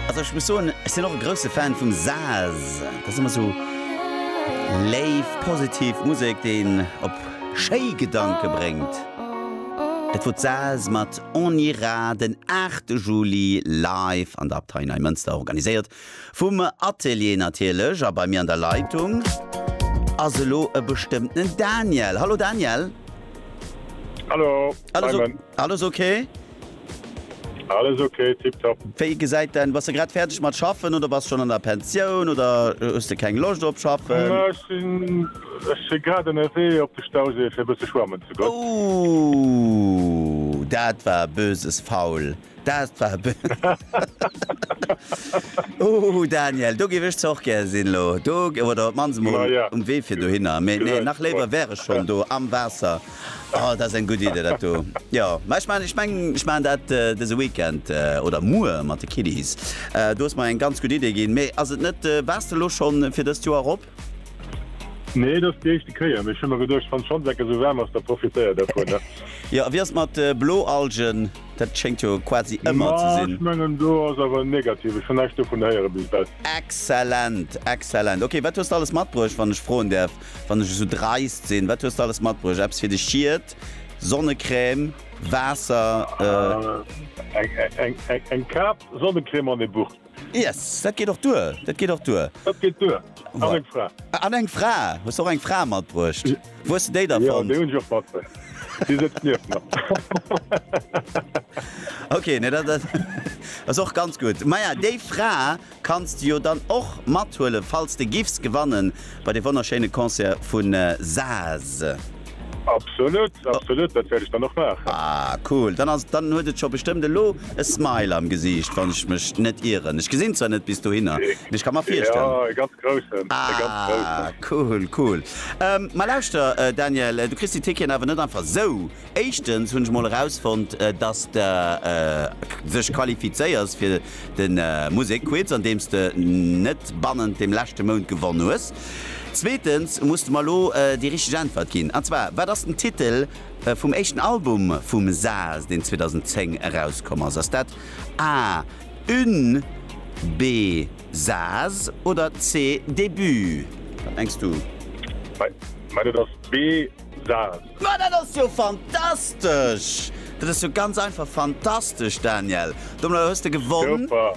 Also ech muss soen, ech sinn och e grousse Fan vum Saz. Dat ass ëmmer sou léif, positiv Musek, déi een op schéi Gedanke bréngt. Dat wor d'Saz mat On ira den 8 Juli live an der Abtei Neimënster, organiséiert vum Atelier natierlech. A bei mir an der Leitung ass elo e bestëmmtenen Daniel. Hallo Daniel! Hallo, Simon! Alles ok? Alles ok, tiptop. Wéi gesäit däin, bass de grad fäerdeg mat schaffen oder bass schonn an der Pensioun oder hues de keng Loscht op schaffen? Na ech sinn, ech si grad ënnerwee op de Stausee fir e bësse schwammen ze goen. Ooh, dat war e böses Foul, dat war e Ooh Daniel, do géif ech zwar och gär sinn elo, do oder op d'mannst emol um Wee fir dohinner, mee nee nach léiwer wär ech schonn do am Waasser. Oh, dat ass eng gutt Idee dat do. Jo, mä ech man, ech mengen, ech man dat dëse Weekend oder muer mat de Kiddies. Du hues mer eng ganz gutt Idee ginn. Mee ass et net, waars de elo schonn fir dëst Joer erop? Nee, et ass déi éischte Kéier. Mee ech hu mer geduecht, wann d'Schanzecken esou waarm ass, da profitéier dervun, ne? Jo, a wéi ass et mat Bloalgen? Dat schéngt jo quasi ëmmer ze Ma, sinn. ech mengen, do ass awer negativ. Ech hunn näischt dovun héiere bis ewell. Exzellent, exzellent. Ok, wat hues de alles matbruecht, wann ech froen däerf? Wann ech esou dreist sinn, wat hues de alles matbruecht? Eppes fir de Schiet, Sonnecrème, Waasser, eh. Eng Kap, Sonnecrème an e Buch. Yes, dat geet och duer, dat geet och duer. Dat geet duer. An eng Fra. An eng Fra. Hues de och eng Fra matbruecht? Wou hues de déi da fonnt? Jo, déi hunn ech och matbruecht. Déi sëtzt nieft mer. Okay, nee, dat ass och ganz gutt. Maja, déi Fra. Kanns de jo dann och mathuelen falls de giffs gewannen bei de wonnerschéine Concert vun Saas. Absolut, absolut, dat wäert ech dann och maachen. Ah cool, dann ass dann huet et scho bestëmmt elo e smile am Gesiicht wann ech mech net ieren. Ech gesinn zwar net bis dohinner, mee ech ka mer virstellen. Jo e ganz groussen, e ganz groussen. Ah cool, cool. Ma lauschter Daniel, du kriss déi Ticketen awer net einfach sou Éischtens hunn ech mol erausfonnt, dass de sech qualifizéiers fir de Musekquiz, an deem s de net bannent dem leschte Mount gewonn hues. Zweetens muss de mer elo déi richteg Äntwert ginn, an zwar, Wat ass den Titel vum éischten Album vum Saz, deen 2010 erauskomm ass? Ass dat A, Une, B, Saz oder C, Début? Wat mengs du? Mä dat ass B. Saas. Ma dat ass jo fantastesch! Dat ass jo ganz einfach fantastesch, Daniel! Domadder hues de gewonnen. Super!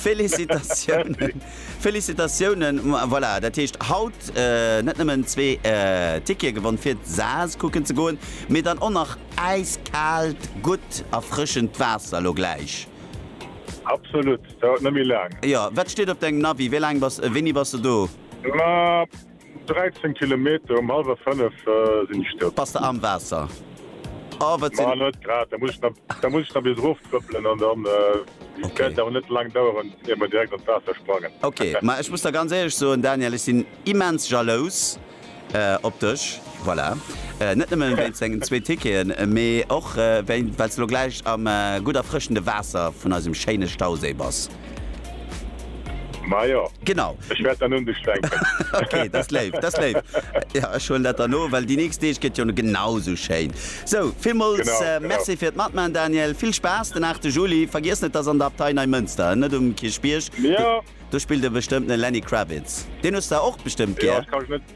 Félicitatiounen! Félicitatiounen! Voilà, dat heescht haut net nëmmen zwee Tickete gewonn, fir Saas kucken ze goen, mee dann och nach äiskaalt, gutt, erfrëschend Waasser elo gläich. Absolut! Dauert net méi laang. Jo, wat steet op dengem Navi? Wéi laang bass, wéini bass de do? Ma. 13 Kilometer, um halwer 5 sin ech do. Bass de am Waasser? Oh wat sin. Ma net grad, da muss ech nach bis erof trëppelen an dann wäert et awer net laang daueren ier mer direkt an d'Waasser sprangen. Ok, ma ech muss der ganz éierlech soen Daniel, ech sin immens jalous op dech, voilà, net nëmmen wéinst dengen zwee Ticketen, mee och well s de lo gläich am gutt erfrëschende Waasser vun eisem schéine Stauséi bass. Majo, genau ech wäert dann un dech denken. Okay, dat ass léif, dat ass léif. Jo, ech huelen dat dann no, well déi nächst Deeg gëtt jo genau esou schéin. Sou, villmools Merci fir d'Matman, Daniel. Vill Spaass den 8 Juli. Vergiess net, dat ass an der Abtei Neimënster en, net um Kierchbierg. Do spillt e bestëmmt den Lenny Kravitz. Deen hues de och bestëmmt gär.